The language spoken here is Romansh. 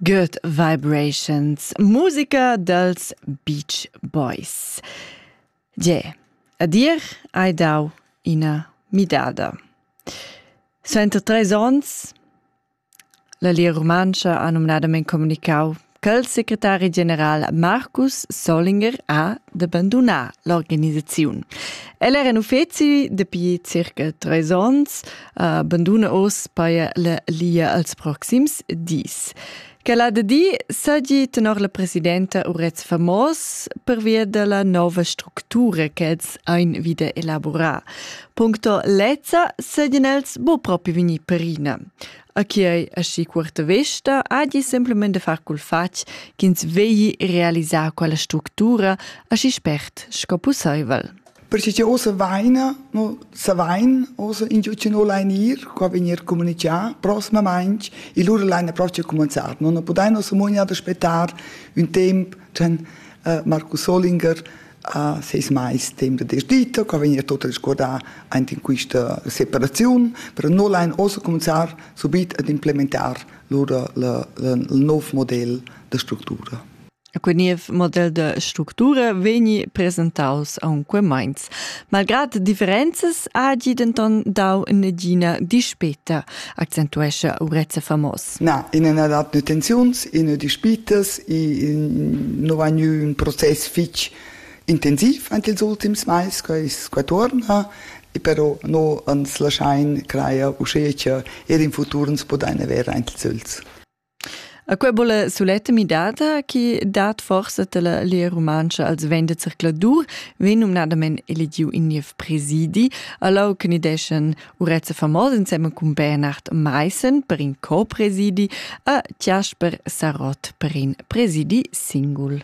Good Vibrations, musica dels Beach Boys. Ge, a dir hai dau ina midada. Suenter treis onns, la Lia Rumantscha ha numnadament communicau Ch'el secretari general Marcus Solinger ha de bandunar l'organisaziun. El era in uffeci dapi circa treis onns, uh, banduna oz paia la lia als proxims dis. Quel ha de di sagi tenor la presidenta Urez Famos pervia della nova structura che els ein wieder elaborar. Puncto lezza segien els bo propi vini perina. a chi ei aschi cuorta vesta hagi semplamein de far cul fatg ch'ins vegli realisar quella structura aschi spert sco pusseivel. Perché che osa vaina, no, sa vain, osa ingiucino lainir, qua venir comunicà prosmamain, e lura laina proce comenzar. Non podaino samognar de spettar un temp, den uh, Markus Olinger a seis mais temp de desdita, che vegna tot a discordar aint in quista separaziun, però no lain ossa cominciar subit ad implementar lur la, la, il nov model de structura. Quel niev model de structura vegni presentaus aunque meins. Malgrad differenzas ha gi denton dau negina dispeta, accentuescha Urezza Famos. Na, in ina dat nutenziuns, in dispitas, in no va gnü ün process fich intensiv ant ils ultims mais, quai qua tuorna, e però no ans laschain crajer uschè cha eir in futur ans podain avair aint ils ögls. A quai vola suletta midada chi dat forsa della Lia Rumantscha als venda zircladur, vegn numnadament eligiu in niev presidi, allo che ni deschen Urezza famos insemma cun Bernhard Meissen per in co-presidi e Jasper Sarott per in presidi singul.